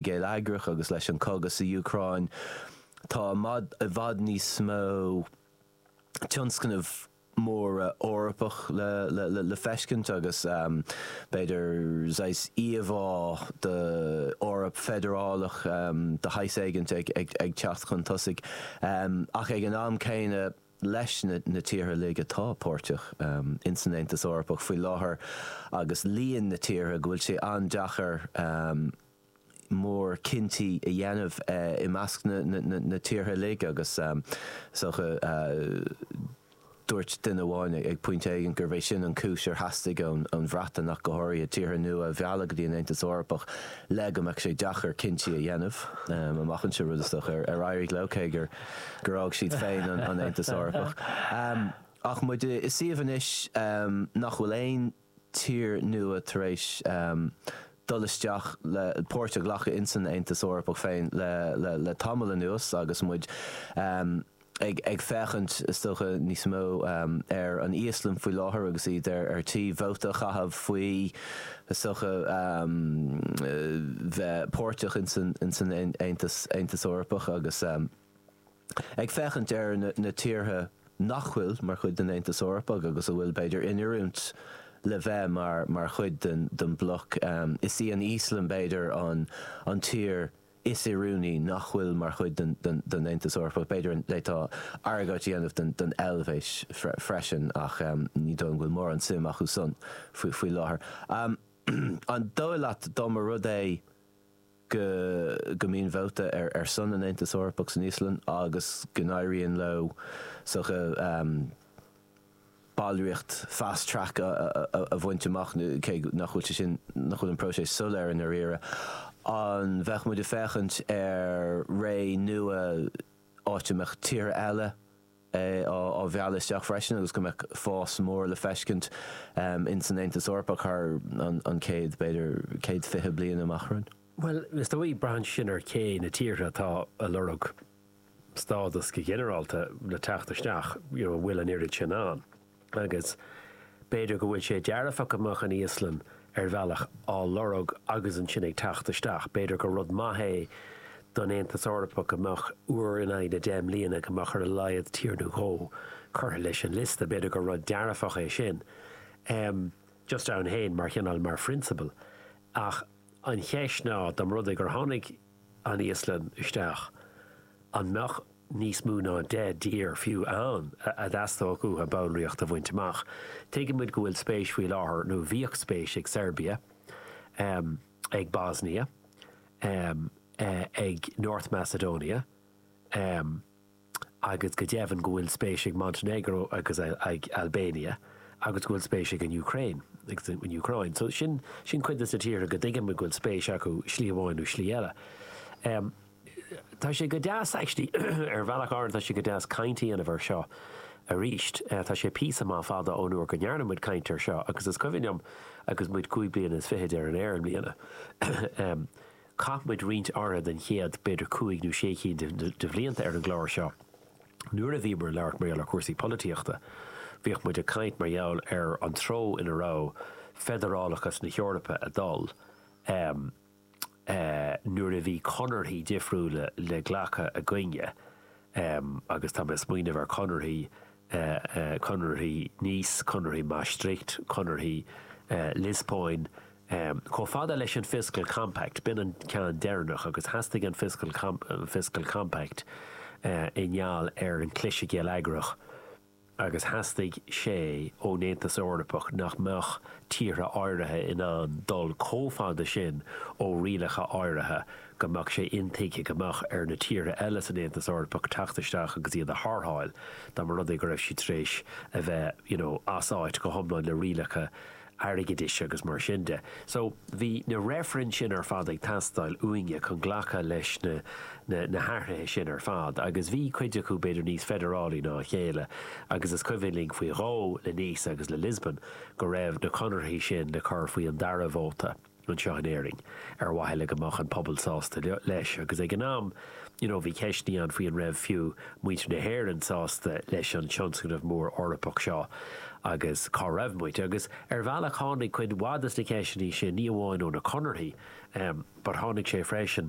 geilleagrach agus leis an cogadh sa Úcráin tá i bhfad níos mó tionscnaimh mhóra Eorpach le feiscint agus b'fhéidir saghas íomhá d'Eoraip feidearálach de shaghas éigint ag teacht chun tosaigh ach ag an am céanna leis na tíortha uilig atá páirteach ins an Aontas Eorpach faoi láthair agus líon na tíortha go bhfuil sé an-deacair mórchinntí a dhéanamh i measc na tíortha uilig agus is dócha dúirt duine amháin ag pointe éigin gurbh é sin an cúis ar theastaigh ón Bhreatain ach go háirithe tíortha nua a mhealladh go dtí an Aontas Eorpach le go mbeadh sé deacair cinntí a dhéanamh amach anseo, rud is dócha ar éirigh leo cé gur. gur fhág siad féin an Aontas Eorpach. Ach muid i suíomh anois nach bhfuil aon tír nua tar éis dul isteach le páirt a ghlacadh insan Aontas Eorpach féin le tamall anuas agus muid ag féachaint, is dócha, níos mó ar an Íoslainn faoi láthair agus iad ar tí vóta a chaitheamh faoi. Is dócha bheith páirteach ins an Aontas Aontas Eorpach agus ag féachaint ar na tíortha nach bhfuil mar chuid den Aontas Eorpach agus a bhfuil, b'fhéidir, in oiriúint le bheith mar chuid den bhloc. Is í an Íoslainn, b'fhéidir, an tír Is oiriúnaí nach bhfuil mar chuid den Aontas Eorpach, b'fhéidir d'fhéadfá argóint a dhéanamh don Eilvéis freisin ach ní dóigh go bhfuil mórán suim acusan faoi láthair. An dóigh leat dá mba rud é go go mbíonn vóta ar son an Aontas Eorpach san Íoslainn agus go n-éiríonn leo sa ballraíocht fast track a bhaint amach, cé nach bhfuil sé sin, nach bhfuil an próiseas soiléir i ndáiríre. An bheadh muid ag féachaint ar ré nua, áit a mbeadh tíortha eile á mhealladh isteach freisin agus go mbeadh fás mór le feiscint ins an Aontas Eorpach thar an chéad, b'fhéidir, chéad fiche bliain amach romhainn? Bhuel, is dóigh, braitheann sin ar cé na tíortha atá ag lorg. stádas go ginearálta le teacht isteach you know an bhfuil an oiread sin ann agus b'fhéidir go bhfuil sé dearfach go mbeadh an Íoslainn ar bhealach á lorg agus ansin ag teacht isteach b'fhéidir gur rud maith é don Aontas Eorpach go mbeadh uair in aghaidh na deich mbliana go mbeadh ar a laghad tír nó dhó curtha leis an liosta b'fhéidir gur rud dearfach é sin em just ann féin mar chineál mar phrionsabal ach an cheist ná dá mba rud é gur tháinig an Íoslainn isteach, an mbeadh níos mó ná deich dtír fiú ann a dteastódh uathu ballraíocht a bhaint amach? Tuigimid go bhfuil spéis faoi láthair, nó bhíodh spéis ag Seirbia, ag Bosnia, ag North Macedonia, agus go deimhin go bhfuil spéis ag Montenegro agus ag Albania agus go bhfuil spéis ag an Úcráin, agus an Úcráin. So sin, sin cuid des na tíortha go dtuigim go bhfuil spéis acu slí amháin nó slí eile. Em, tá sé go deas actually, ar bhealach áirid tá sé go deas caint a dhéanamh ar seo arís, tá sé píosa maith fada ón uair go ndearna muid caint ar seo agus is cuimhin liom agus muid cúig bliana is fichid ar an aer i mbliana, em, Chaith muid roinnt áirithe den chéad, b'fhéidir cúig nó sé cinn de bhlianta ar an gclár seo nuair a bhíomar ag labhairt mar gheall ar chúrsaí polaitíochta. Bhíodh muid ag caint mar gheall ar an treo ina raibh feidearálachas na hEorpa ag dul nuair a bhí conarthaí difriúla le glacadh againne agus tá mé ag smaoineamh ar chonarthaí, conarthaí Nice, conarthaí Maastricht, conarthaí Liospóin. Chomh fada leis an Fiscal Compact, b'in an ceann deireanach, agus theastaigh an Fiscal Compact i ngeall ar an chliseadh geilleagrach agus theastaigh sé ón Aontas Eorpach nach mbeadh tíortha áirithe in ann dul chomh fada sin ó rialacha áirithe go mbeadh sé intuigthe go mbeadh ar na tíortha eile san Aontas Eorpach teacht isteach agus iad a tharrtháil dá mba rud é go raibh siad tar éis a bheith, you know, as áit go hiomlán le rialacha airgeadais agus mar sin de. So, bhí na reifrinn sin ar fad ag teastáil uainne chun glacadh leis na, na, na hathruithe sin ar fad agus bhí cuid acu b'fhéidir níos feidearálaí ná a chéile agus is cuimhin linn faoi dhó le Nice agus le Lisbon go raibh na conarthaí sin le cur faoi an dara vóta anseo in Éirinn, ar mhaithe le go mbeadh an pobal sásta leis, agus ag an am, you know, bhí ceisteannaí ann faoi an raibh fiú muintir na hÉireann sásta leis an tionscnamh mór Eorpach seo, agus cá raibh muid, agus ar bhealach tháinig cuid mhaith de na ceisteannaí sin, ní amháin ó na conarthaí, em, but tháinig sé freisin,